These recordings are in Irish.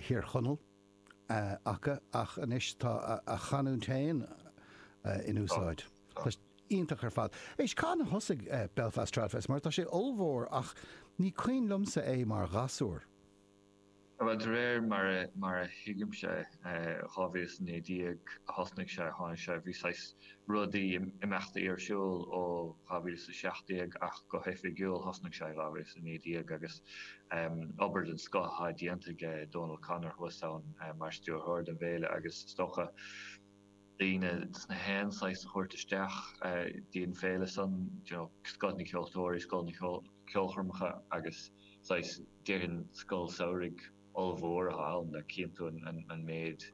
Thír Chonaill acu ach anois tá a chanúint féin in úsáid. Tá sé. iontach ar fad. Éist, cathain a thosaigh Belfast Tradfest mar tá sé ollmhór ach ní cuimhin liomsa é mar ghasúr. Bhuel, de réir mar a thuigimse, 2019 a thosnaigh sé, tháinig sé, bhí saghas rudaí, imeachtaí ar siúl ó 2017 ach go hoifigiúil thosnaigh sé i 2019 agus obair den scoth atá déanta aige Dónal O'Connor thuas ann mar stiúrthóir don bhféile agus is dócha daoine as na haon saghas a thabhairt isteach dtí an féile san, scoth na ceoltóirí, scoth na ceolchoirmeacha agus saghas, déarfainn, scoil samhraidh ollmhór atá ann le cinntiú an méid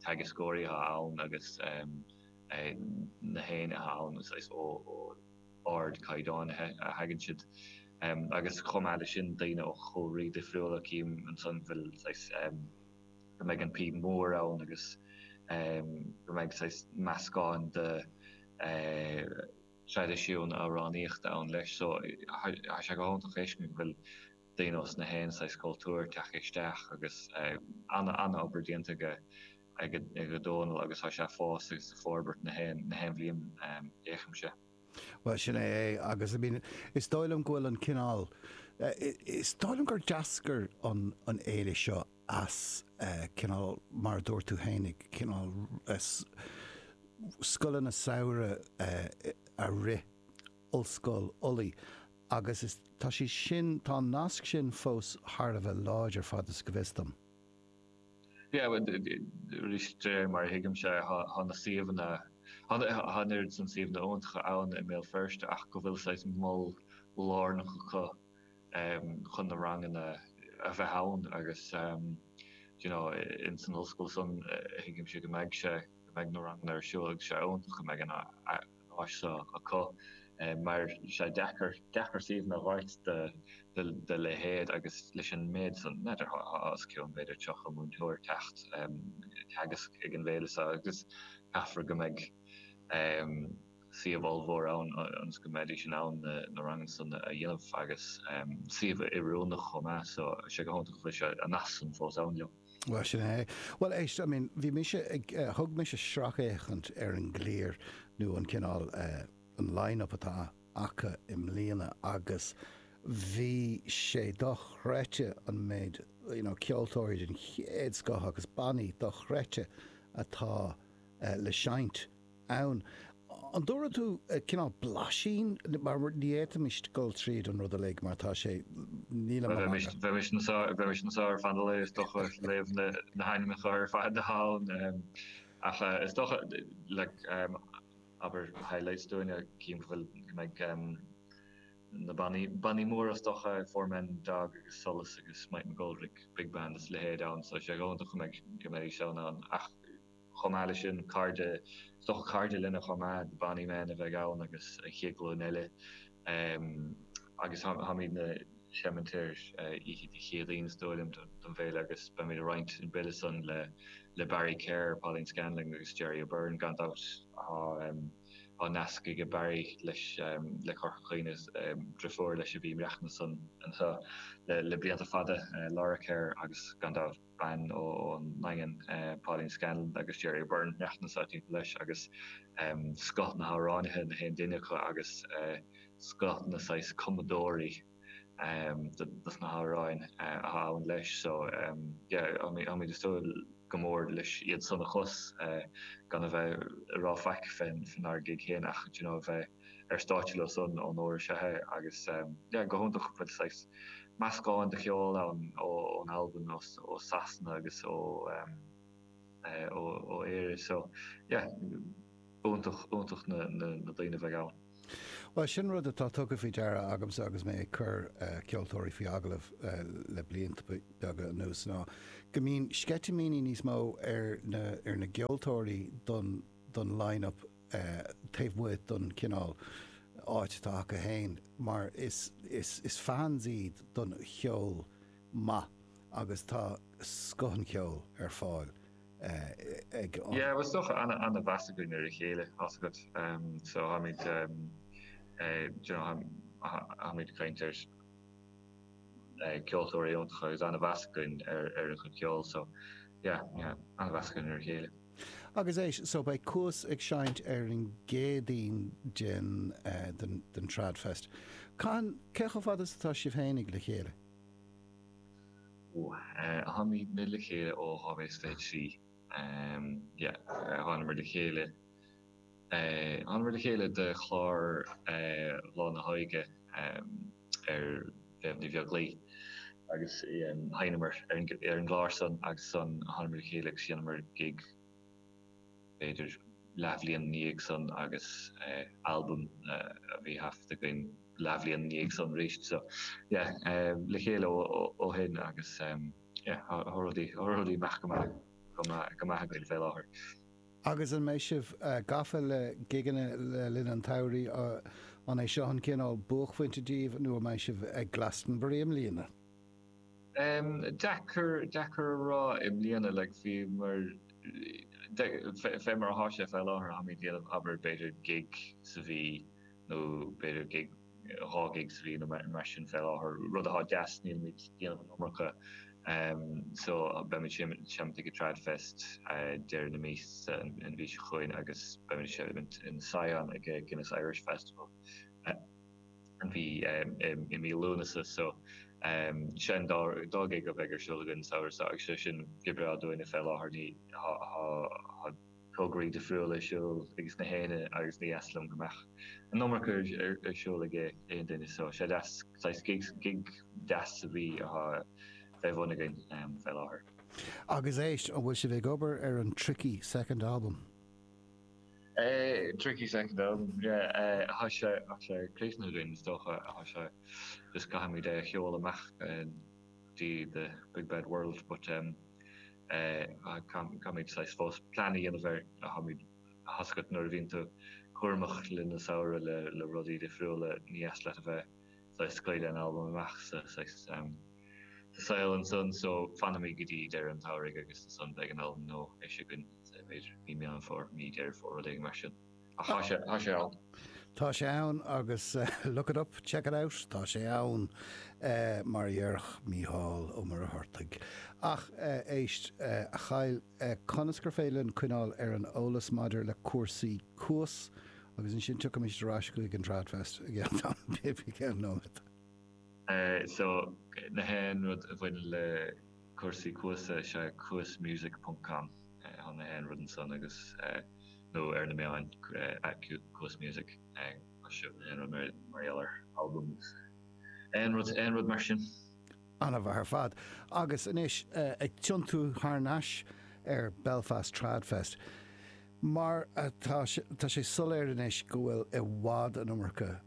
teagascóirí atá ann agus na haon éinne atá ann saghas ó ard caighdeán a thagann siad agus chomh maith leis sin daoine ó chúlraí difriúla cím ansan bhfuil saghas go mbeidh an píb mór ann agus go mbeidh saghas meascán de thraidisiúin amhránaíochta ann leis so tá sé go hiontach fheiscint go bhfuil duine as na haon saghas cultúr teacht isteach agus ana ana obair déanta aige Dónal agus tá sé ag fás agus ag forbairt na haon na haon bhliain fhéachann sé. Bhuel, sin é é agus I mean is dóigh liom go bhfuil an cineál is dóigh liom gur d'eascair an an fhéile seo as eh, cineál mar a dúirt tú féin ag cineál eh, scoileanna samhraidh eh, a rith Ollscoil Ulaidh agus tá sé sin, tá an nasc sin fós thar a bheith láidir fad is go bhfios dom. Yeah, arís de réir mar a thuigimse tá na suíomhanna, tá an oiread san suíomhanna iontacha ann i mBéal Feirste ach go bhfuil saghas mol lárnach acu chun na ranganna a bheith ann agus do you know ins an ollscoil san a thuigimse go mbeidh sé, go mbeidh na ranganna ar siúl agus sé iontach go mbeidh an áis seo acu mar tá sé deacair, deacair suíomhanna a dh'fháilt do, do leithéid agus leis an méid san múinteoirí tá os cionn b'fhéidir 30 múinteoir teacht ag teagasc ag an bhféile seo agus caithfear go mbeidh ehm suíomh ollmhór ann ionas go mbeidís in ann na, na ranganna san a dhéanamh agus ehm suíomh oiriúnach chomh maith so sé go hiontach go bhfuil an nasc san fós ann leo. Bhuel, sin é. Bhuel, éist, I mean, bhí mise ag, eh, thug mise sracfhéachaint ar an gclár nó an cineál, eh, an line-up atá acu i mbliana agus bhí sé dochreidte an méid, you know, ceoltóirí den chéad scoth agus bannaí dochreidte atá, eh, le seinnt. ann. An dtabharfaidh tú cineál blaisín? Mar ní fhéadfaimis dul tríd an rud uilig mar tá sé. Níl an. Bheimis anseo ar feadh an lae is dócha, ag léamh na n-ainmneacha ar fad atá ann. Ach is dócha, abair highlights dúinne, cinn a bhfuil go mbeidh na bannaí móra is dócha, Four Men and a Dog agus Solas agus Mike McGoldrick Big Band is a leithéid ann. So is iontach go mbeidís ann ann ach. Chomh maith le sin, cairde, is dócha cairde linne chomh maith, The Bonny Men a bheidh ann agus an chéad ghlúin eile. Agus táimid ag seinnt ar oíche Dé Céadaoin is dóigh liom don bhféile agus beimid ag roinnt an bille san le le Barry Kerr, Pauline Scanlon agus Gerry O'Beirne gan dabht. Tá nasc aige Barry leis le Corca Dhuibhne is driofúr leis a bhí ag maireachtaint anseo le le blianta fada, Laura Kerr agus gan dabht. bean ón nDaingean, Pauline Scanlon agus Gerry O'Beirne, ag maireachtaint sa Daingean leis agus scoth na hamhránaithe, na haon duine acu agus scoth na saghas cumadóirí dos na hamhráin atá ann leis. So yeah táimid ag súil go mór leis iad san a chlos gan a bheith ag rá faic fénár gig féin ach d'you know a bheith ar stáitse leo san an uair seo é agus yeah go hiontach go bhfuil saghas meascán de cheol ann ó ón Albain ó ó Sasana agus ó eh ó ó Éire so yeah iontach iontach na na na daoine a bheidh ann. Bhuel sin rud atá tugtha faoi deara agamsa agus mé ag cur eh ceoltóirí faoi agallamh eh le blianta beaga anuas ná go mbíonn sceitimíní níos mó ar na ar na gceoltóirí don don line up taobh amuigh don chineál áit atá acu féin mar is fans iad don cheol maith agus tá scoth an cheoil ar fáil ag an. Yeah, bhuel is dócha ana-mheas againn ar a chéile tá a fhios agat so tháimid you know tháimid ag caint ar ceoltóirí iontach agus ana-mheas againn ar a chuid ceoil so yeah, yeah, ana-mheas againn ar a chéile. Agus é so, beidh Cuas ag seinnt ar an gCéadaoin den Trad Fest. Cathain, cé chomh fada is atá sibh fhéinig le chéile? Táimidne le chéile ó 2023. Thánamar le chéile thánamar le chéile do chlár Lán a' Mhála ag Méabh Ní Bheaglaoich agus sheinneamar ar an gclár san agus ansan thánamar le chéile agus dheineamar gig b'fhéidir leathbhliain ina dhiaidh san agus albam a bhí taifeadta againn leathbhliain ina dhiaidh san arís so yeah le chéile ó shin agus yeah tá rudaí ag imeacht go maith againn fé láthair. Agus an mbeidh sibh gafa le gigeanna le linn an tsamhraidh? An é seo an cineál buaicphointe daoibh nó an mbeidh sibh ag Glastonbury i mbliana? Deacair, deacair a rá i mbliana, like bhí mar, fé mar athá sé fé láthair, táimid ag déanamh abair b'fhéidir gig sa mhí nó b'fhéidir gig 2 ghig sa mhí nó mar sin fé láthair, rud athá deas, nílimid ag déanamh an iomarca so beimid ag seimint ag an Trad Fest deireadh na míosa an mhí seo chugainn agus beimid ag seimint in Sion ag an Guinness Irish Festival an mhí i mí Lúnasa so sin dhá dhá ghig a bheidh ar siúl againn an samhradh so agus sé sin go breá dúinne fé láthair mar athá tograí difriúla ar siúl ages na héinne agus ní dheas liom go mbeadh an iomarca ar siúl ag aon duine so sé deas saghas gigs, gig deas a bhí athá fé bhun againn fé láthair. Agus éist, an bhfuil sibh ag obair ar an Tricky Second Album? Tricky Second Album, yeah, athá sé thá sé críochnaithe againn is dócha athá sé just caithfimid é a sheoladh amach dtí the big bad world but ehm, Caithfimid saghas fós plean a dhéanamh air. Caithfimid a thuiscint nuair a bhíonn tú cúramach le linn an tsamhraidh le rudaí difriúla. Ní dheas leat a bheith saghas ag scaoileadh an albaim amach sa saol ansan so fanfaimid go dtí deireadh an tsamhraidh agus ansan beidh an albam nua eisithe againn, b'fhéidir mí Meán Fómhair, mí Deireadh Fómhair, rud éigin mar sin. Thá sé, thá sé ann. Tá sé ann agus look it up, check it out, tá sé ann, mar a dhéarfadh Mícheál Ó Muircheartaigh. Ach éist, a Kyle, conas gur féidir linn coinneáil ar an eolas maidir le cúrsaí Cuas agus ansin tiocfaimid ar ais chuig an Tradfest i gceann nóiméad? So, nach aon rud a bhaineann le. cúrsaí Cuas is ea Cuas Music ponc com. Thá nach aon rud ansan agus nó ar na meáin Cuas Music thá nach aon rud mar gheall ar albam agus aon rud aon rud mar sin. Ana-mhaith ar fad. Agus anois ag tiontú thar n-ais ar Belfast Trad Fest. Mar atá tá sé soiléir anois go bhfuil i bhfad an iomarca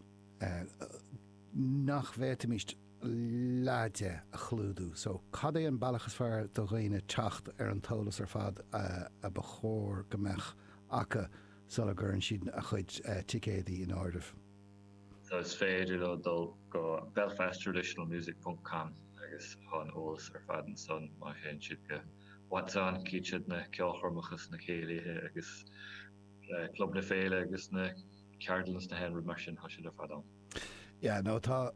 nach bhféadfaimís leath de a chlúdú. So, cad é an bealach is fearr do dhaoine teacht ar an t-eolas ar fad a ba chóir go mbeadh acu sula gcuireann siad a chuid ticéadaí in áirithe? So, is féidir leo dul go belfasttraditionalmusic.com agus thá an t-eolas ar fad ansan. Má théann siad go What's On, cífid siad na ceolchoirmeacha is na céilithe agus Club na Féile agus na ceardlanna is nach aon rud mar sin, thá siad ar fad ann. Yeah, no, tá.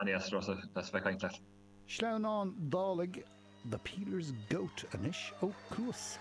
An eas rosa as bheith cainnt leat. Sleamhnán Dálaigh The Peeler's Goat anois ó Cuas.